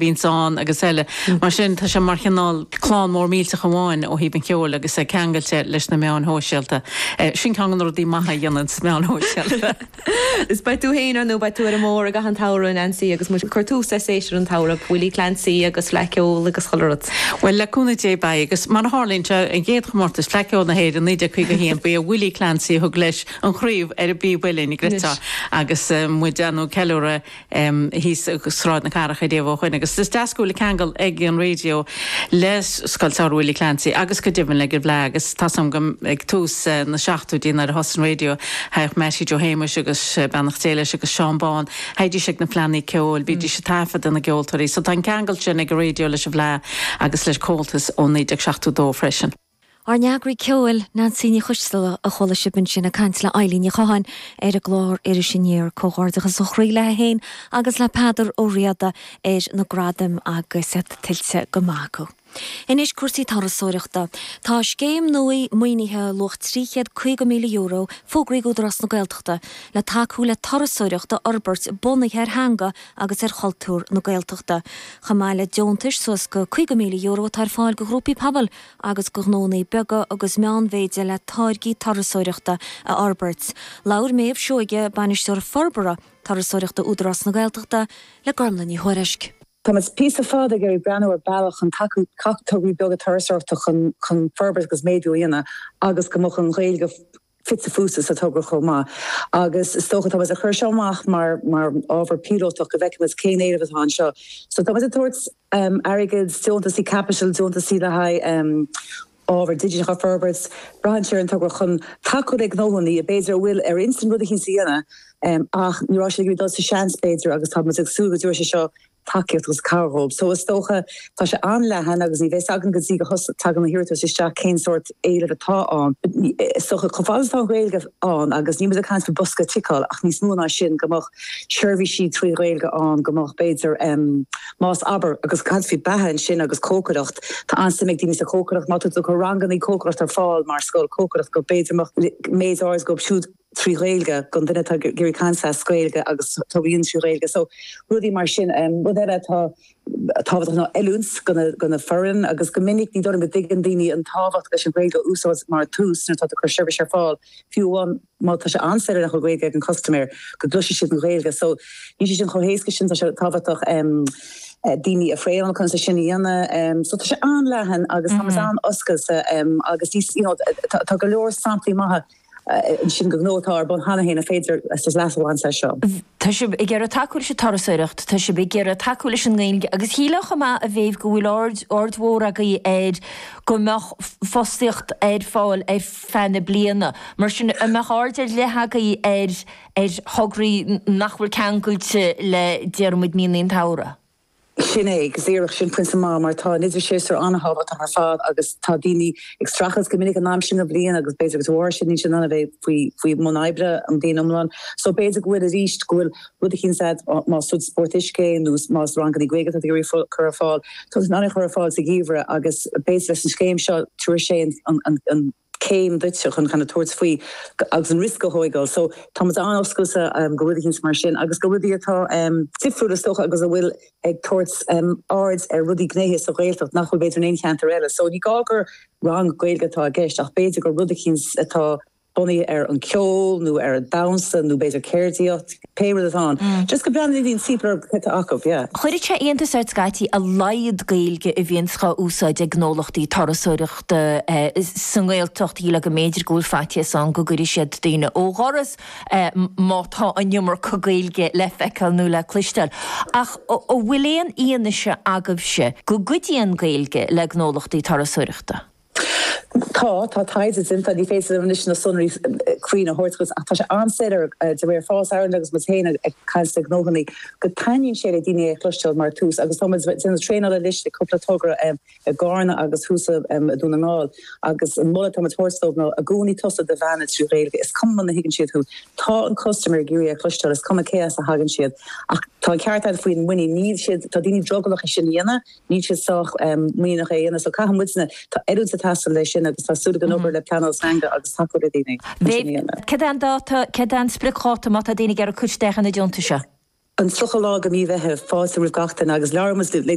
Vince Vaughn agus eile. Mar sin, tá sé mar chineál clann mór millteach amháin ó thaobh an cheoil agus é ceangailte leis na meáin shóisialta. Sin ceann de na rudaí maithe a dhéanann sna meáin shóisialta. Is beidh tú féin ar nó beidh tú ar an mbóthar i gcaitheamh an tsamhraidh, a Nancy, agus muid ag cur tús le séasúr an tsamhraidh, Willie Clancy agus Fleadh Cheoil agus chuile rud. Bhuel, le cúnamh Dé beidh, agus mar a tharlaíonn sé, an chéad chomórtas Fleadh Cheoil na hÉireann 1951, ba é Willie Clancy a thug leis an chraobh ar an bpíb uillinn, an gcreidfeá, agus muid ag déanamh ceiliúradh thíos i Sráid na Cathrach i dtaobh dó sin agus is deas go bhfuil ceangal ag an raidió le Scoil Samhraidh Willie Clancy agus go deimhin ag an bhFleadh agus tá a fhios agam go ag tús na seachtóidí nuair a thosaigh an raidió thagadh Meaití Joe Shéamuis agus beannacht Dé leis agus Seán Bán théidís ag na fleannaí ceoil, bhídís ag taifeadadh na gceoltóirí so tá an ceangal sin ag an raidió leis an bhFleadh agus le Comhaltas ó 1972 freisin. Ár n-eagraí ceoil, Neansaí Ní Choisdealbha, a chuala sibh ansin ag caint le hEibhlín Ní Chualáin ar an gclár Iris Aniar. Comhghairdeachas ó chroí léithi féin agus le Peadar Ó Riada ar na gradaim agus iad tuillte go maith acu. Anois cúrsaí turasóireachta. Tá scéim nua maoinithe luach €350,000 fógraithe ag Údarás na Gaeltachta le tacú le turasóireacht a fhorbairt bunaithe ar theanga agus ar chultúr na Gaeltachta. Chomh maith le deontais suas go €50,000 atá ar fáil go ghrúpaí pobail, agus go ghnónna beaga agus meánmhéide le táirgí turasóireachta a fhorbairt. Labhair Méabh Seoige, Bainisteoir Forbartha Turasóireachta Údarás na Gaeltachta le Gormlaith Ní Thuairisg. Tá muid píosa fada ag iarraidh breathnú ar bhealach chun tacú le tograí beaga turasóireachta chun forbairt agus méadú a dhéanamh agus go mbeadh an Ghaeilge fite fuaite sa togra chomh maith agus is dócha, tá muid ag cur seo amach mar ábhar píolótach go bhfeicfimid cén éileamh atá anseo. So tá muid ag tabhairt airgead, deontais caipitil, deontais le haghaidh ábhar digiteach a fhorbairt. Braitheann sé ar an togra chun tacú le gnóthannaí a b'fhéidir a bhfuil ar intinn rud eicínt a dhéanamh ach ní raibh siad ag iarraidh dul sa seans b'fhéidir agus tá muid ag súil go dtabharfaidh sé seo tacaíocht agus cabhair dhóibh. So is dócha, tá sé an-leathan agus ní bheidh a fhios againn go dtí go dtagann na hiarratais isteach cén sórt éilimh atá ann. Is dócha, chomh fada is atá an Ghaeilge ann, agus níl muid ag caint faoi bosca ticeáil ach níos mó ná sin, go mbeadh seirbhísí trí Ghaeilge ann, go mbeadh b'fhéidir, más, abair, agus ag caint faoi beatha ansin agus cócaireacht, tá an-suim ag daoine sa chócaireacht, má tá tú ag cur rangannaí cócaireachta ar fáil mar scoil cócaireacht go b'fhéidir mbeadh méid áirid dhíobh siúd. trí Ghaeilge, don duine atá ag iarraidh caint as Gaeilge agus tógaíonn trí Ghaeilge so rudaí mar sin. Rud eile atá tábhachtach ná oiliúint don fhoireann agus go minic ní dóigh liom go dtuigeann daoine an tábhacht leis an Ghaeilge a úsáid mar tús nuair atá tú ag cur seirbhís ar fáil, fiú amháin má tá sé an-soiléir nach bhfuil Gaeilge ag an custaiméir, go gcloisfidh siad an Ghaeilge so níl sé sin chomh héasca sin, tá sé tábhachtach daoine a thraenáil conas é sin a dhéanamh so tá sé an-leathan agus táimid an-oscailte agus you know tá go leor samplaí maithe. Sin do ghnó atá ar bun cheana féin ar féidir leas a bhaint as seo. Tá sibh ag iarraidh tacú leis an turasóireacht, tá sibh ag iarraidh tacú leis an nGaeilge agus shílfeá chomh maith a Mhéabh go bhfuil aird, aird mhór agaibh air go mbeadh fostaíocht ar fáil ar feadh na bliana. Mar sin, an mbeadh aird ar leith agaibh ar, ar thograí nach bhfuil ceangailte le déarfaimid míonna an tsamhraidh? Sin é, agus díreach sin pointe maith, mar tá an t-idirshéasúr an-thábhachtach ar fad agus tá daoine ag streachailt go minic an t-am sin den bhliain agus b'fhéidir go bhfuil siad, níl siad in ann a bheith faoi faoi bhun oibre an bhliain iomlán. So b'fhéidir go bhfuil arís, go bhfuil rud eicínt sa, más rud spórt uisce é nó más ranganna Gaeilge atá tú ag iarraidh a chur ar fáil, tá tú in ann é a chur ar fáil sa gheimhreadh agus b'fhéidir leis an scéim seo, tabharfaidh sé an céim duit chun cineál tabhairt faoi agus an riosca a thóigeáil. So tá muid an-oscailte go rud eicínt mar sin agus go rudaí atá difriúil is dócha agus a bhfuil ag tabhairt aird ar rudaí gnéithe sa Ghaeltacht nach bhfuil b'fhéidir in aon cheantar eile. So ní gá gur rang Gaeilge atá i gceist ach b'fhéidir gur rud eicínt atá bunaithe ar an ceol nó ar an damhsa nó b'fhéidir ceardaíocht. Pé rud atá ann. Just go breathnaíonn an CPL ar cad tá acu, yeah. Chuirfeadh sé iontas ort scaití a laghad Gaeilge a bhíonns dhá úsáid ag gnólachtaí turasóireachta sa nGaeltacht, shílfeá go mb'fhéidir go bhfuil faitíos ann go gcuirfidh siad daoine ó dhoras má tá an iomarca Gaeilge le feiceáil nó le cloisteáil. Ach an bhfuil aon fhianaise agaibhse go gcuidíonn Gaeilge le gnólachtaí turasóireachta? Tá, tá taighde déanta, ní féidir liom anois na sonraí cruinn a thabhairt dhuit ach tá sé an-soiléir de réir Fáilte Ireland agus muid féin ag caint le gnóthannaí go taitníonn sé le daoine é a chloisteáil mar thús agus tá muid ag déanamh traenála anois ag cúpla togra i gCarna agus thuas i Dún na nGall agus an moladh atá muid thabhairt dóibh ná i gcónaí tosú ag beannú trí Ghaeilge is cuma muna thuigeann siad thú tá an customer ag iarraidh é a chloisteáil is cuma cé as a thagann siad ach tá an ceart agat faoin muinín níl siad, tá daoine drogallach é sin a dhéanamh. Níl siad sách muiníneach é a dhéanamh so caithfidh muidne, tá oiliúint ag teastáil leis sin agus tá súil againn obair le pleanáil teanga agus tacú le daoine chun sin a dhéanamh. Cad é an dáta, cad é an spriocdháta má tá daoine ag iarraidh cur isteach ar na deontais seo? An 30ú lá de mhí Mheitheamh, fáilte roimh gach duine agus labhróidh muid le.